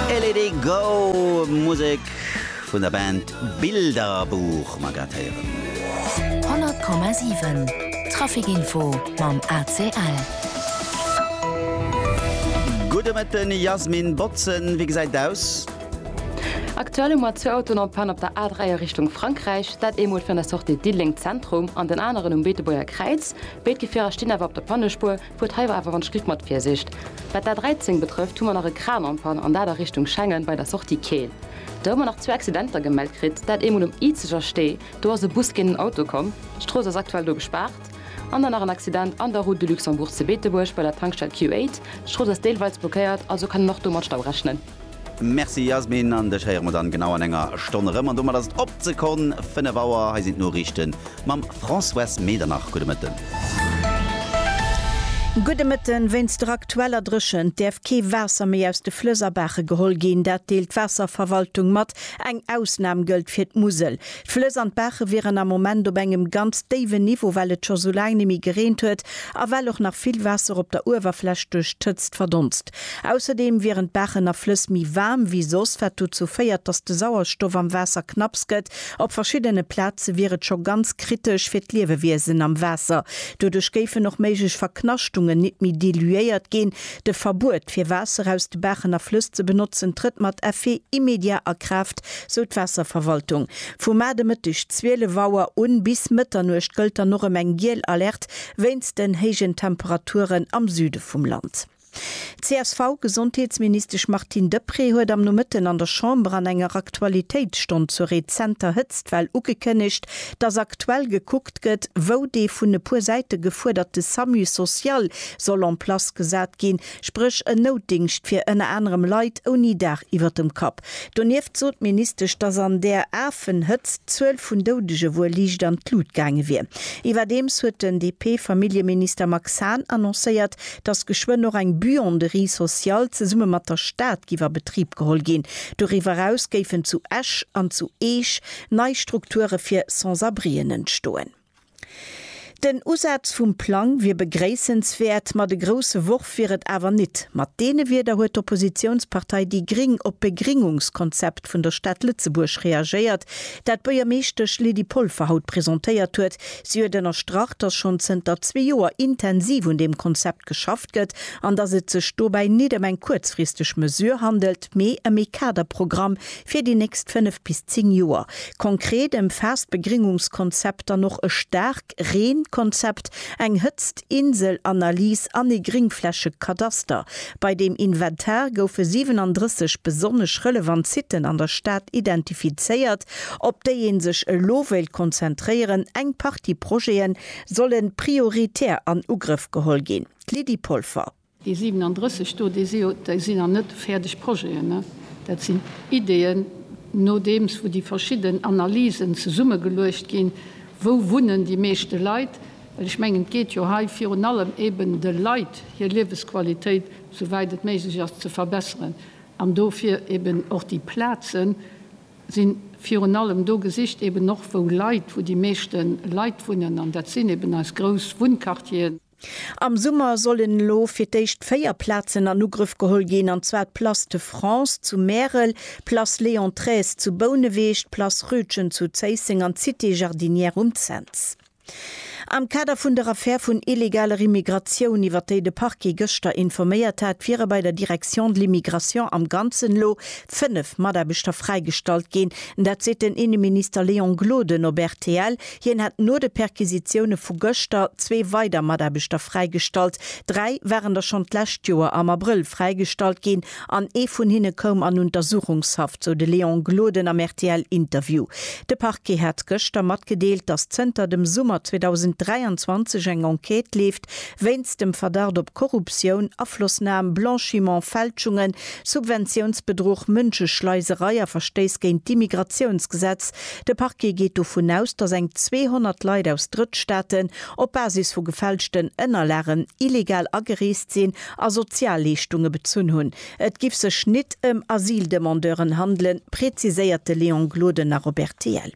Elede Go Musek vun der Band Bilderbuch mer grad héieren. 100,7 Traficinfo mam ACL. Gudde Mëtten Yasmin Botzen, wéi gesäit et aus? Aktuell hu mer zwee Autoen en Panne op der A3 a Richtung Frankräich. Dat eemol virun der Sortie Diddeleng Zentrum an den aneren um Beetebuerger Kräiz. Béid Gefierer stinn awer op der Pannespuer. Huet hei awer en Schliff mat Virsicht. Wat d'A13 betrëfft hu mer nach e Kran en panne an dat a Richtung Schengen bei der Sortie Keel. Do hu mer nach zwou Accidenter gemellt kritt, dat eemol um Izeger Stee, do ass e Bus géint en Auto komm, d'Strooss ass aktuell do gespaart. An dann nach en Accident an der Route de Luxembourg zu Beetebuerg bei der Tankstell Q8, d'Strooss ass deelweils blockéiert, also kann een och do mat Stau rechnen. Merci Yasmin, an dech héiere mer dann genau an enger Stonn erëm. An domat ass et op d'Sekonn 5 Auer. Hei sinn d'Noriichten mam Françoise Medernach. Gudde Mëtten. Gudde Mëtten. Wéinst der aktueller Dréchent däerf kee Waasser méi aus de Flëss a Baache geholl ginn. Dat deelt d'Waasserverwaltung mat. Eng Ausnam gëllt fir d'Musel. D'Flëss an d'Baache wieren am Moment op engem ganz déiwen Niveau, well et scho sou laang net méi gereent huet a well och nach vill Waasser op der Uewerfläch duerch d'Hëtzt verdonst. Ausserdeem wieren d'Baachen a Flëss méi waarm wéi soss, wat dozou féiert, datt de Sauerstoff am Waasser knapps gëtt. Op verschiddene Plaze wier et scho ganz kritesch fir d'Liewewiesen am Waasser. Doduerch géifen och méiglech Verknaschtungen nit méi diluéiert ginn. De Verbuet, fir Waasser aus de Baachen a Flëss ze benotzen, trëtt mat Effet immédiat a Kraaft, sou d'Waasserverwaltung. Vu mar de Mëtteg 12 Auer u bis Mëtternuecht gëllt dann och erëm eng giel Alerte wéinst den héijen Temperaturen am Süde vum Land. D'CSV-Gesondheetsministesch Martine Deprez huet am Nomëtten an der Chamber an enger Aktualitéitsstonn zur rezenter Hëtztwell ugekënnegt, datt aktuell gekuckt gëtt, wou dee vun e puer Säite gefuerderte Samu social soll en place gesat ginn, spréch en Noutdingscht fir ënner anerem Leit ouni Dag iwwert dem Kapp. Donieft sot d'Ministesch, datt an där afen Hëtzt d'Zuel vun Doudege wuel liicht an d'Lut gaange wier. Iwwerdeems huet den DP-Familljeminister Max Hahn annoncéiert, datt geschwënn och eng Buanderie sociale zesumme mat der Stad giff a Betrib geholl ginn. Doriwwer eraus géifen zu Esch an zu Eech nei Strukture fir Sans-abrien entstoen. Den Usaz vum Plang wier begréissenswäert, ma de grousse Worf wier et awer nit. Mat deene Wierder huet d'Oppositiounspartei déi gring op d'Begringungskonzept vun der Stad Lëtzebuerg reagéiert, dat d'Buergermeeschtesch Lydie Polfer haut presentéiert huet. Si huet ënnerstrach, datt schonn zënter zwee Joer intensiv un deem Konzept geschafft gëtt an datt et sech dobäi nit ëm eng kuerzfristeg Mesure handelt, mee ëm ee Kaderprogramm, Fir déi nächst 5 bis 10 Joer. Konkret ëmfaasst d'Begringungskonzept dann och e Staarkreenkonzept, eng Hëtztinsel-Analys an ee Gringflächekadaster. Bei deem Inventar goufe 37 besonnesch relevant Siten an der Stad identifizéiert, op déi ee sech elo wéilt konzentréieren. Eng Partie Projete solle prioritär an Ugrëff geholl ginn. D'Lydie Polfer. Déi 37 do, déi si jo, déi sinn nach net fäerdeg Projeten, dat sinn Ideeën, nodeems wou déi verschidden Analysen zesummegeluecht ginn, wou wunnen déi meeschte Leit, well ech mengen, et geet jo hei virun allem eben de Leit hir Liewesqualitéit, souwäit et méiglech ass, ze verbesseren an dofir eben och déi Plaze si virun allem do gesicht, eben och wou Leit, wou déi meeschte Leit wunnen an dat sinn eben eis grouss Wunnquartieren. Am Summer sollen elo fir d'éischt 4 Plazen an Ugrëff geholl ginn, an zwar d'Place de France zu Märel, d'Place Léon xiii zu Bouneweg, d'Place Rütgen zu Zéisseng an d'Cité Jardinière um Cents. Am Kader vun der Affär vun illegaler Immigratioun, iwwer déi de Parquet gëschter informéiert hat, wiere bei der Direction de l'immigration am Ganzen elo 5 Mataarbechter fräigestallt ginn. Dat seet den Inneminister Léon Gloden op rtl. Hien hätt no de Perquisitioune vu gëschter zwee weider Mataarbechter fräigestallt. Dräi waren der schonn d'lescht Joer am Abrëll fräigestallt ginn an ee vun hinne koum an Untersuchungshaft, sou de Léon Gloden am RTL-Interview. De Parquet hat gëschter matgedeelt, datt zënter dem Summer 2023 eng Enquête leeft, wéinst dem Verdacht op Korruptioun, Aflossnam, Blanchiment, Fälschungen, Subventiounsbedruch, Mënscheschleiserei a Verstéiss géint d'Immigratiounsgesetz. De Parquet geet dovun aus, datt eng 200 Leit aus Drëttstaaten op Basis vu gefälschten Ënnerlagen illegal agereest sinn a Sozialleeschtunge bezunn hunn. Et giff sech nit ëm Asyldemandeuren handelen, präziséiert de Léon Gloden nach op rtl.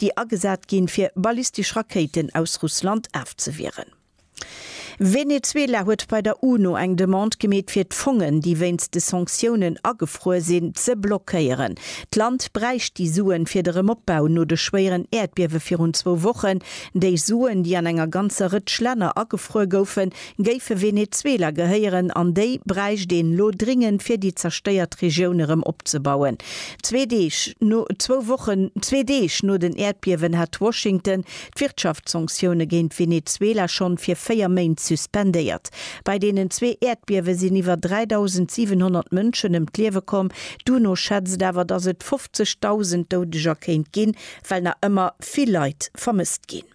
déi agesat ginn, fir ballistesch Rakéiten aus Russland afzewieren. Venezuela huet bei der UNO eng Demande gemeet, fir d'Fongen, déi wéinst de Sanktiounen agefruer sinn, ze blockéieren. D'Land bräicht déi Suen fir de Remopbau no de schwéieren Äerdbiewe virun zwou Wochen. Déi Suen, déi an enger ganzer Rëtsch Länner agefruer goufen, Géife Venezuela gehéieren, an déi bräicht een elo dringend, fir déi zerstéiert Regioun erëm opzebauen. Zwee Deeg no, zwou Wochen, zwee Deeg no den Äerdbiewen hat Washington d'Wirtschaftssanktioune géint Venezuela schonn fir véier Méint suspendéiert. Bei deenen zwee Äerdbiewe sinn iwwer 3.700 Mënschen ëm d'Liewe komm. D'UNO schätzt awer, datt et 50.000 Doudeger kéint ginn, well nach ëmmer vill Leit vermësst ginn.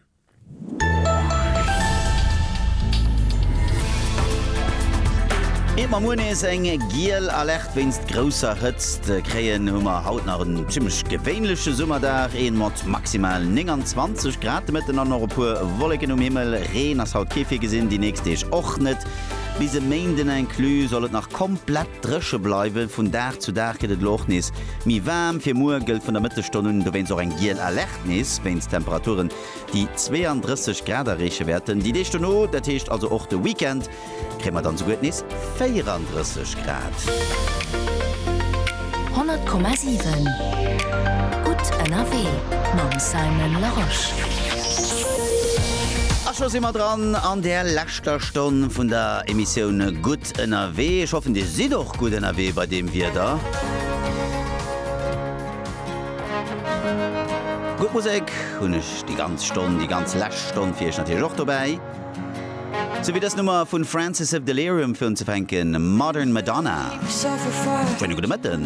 Ier mer muer nees eng giel Alerte wéinst grousser Hëtzt kréien, hu mer haut nach en zimmlech gewéinleche Summerdag, een mat maximal 29 Grad de Mëtten an och e puer Wolleken um Himmel. Reen ass haut kee virgesinn, déi nächst Deeg och net. Bis e Méinden inclus soll et nach komplett. Dréche bleiwen, vun Dag zu Dag gëtt et elo och nees méi waarm. Fir muer gëllt vun der Mëttesstonn un dowéinst och eng giel Alerte, nees wéinst Temperaturen, déi 32 Grad erreeche wäerten. Déi Deeg dono, dat heescht also och de Weekend, kréie mer dann souguer nees 34 Grad. 100,7 Gutt ënnerwee mam Simon Larosche. A scho si mer dran an där leschter Stonn vun der Emissioun Gutt. gutt ënnerwee. Ech hoffen dir sidd och gutt ënnerwee bei deem Wieder. Gutt Musek hunn ech déi ganz Stonn, déi ganz lescht Stonn fir iech natierlech och dobäi. Sou wéi dës Nummer vun Francis of Delirium fir unzefänken, Modern Madonna. Schöne gudde Mëtten.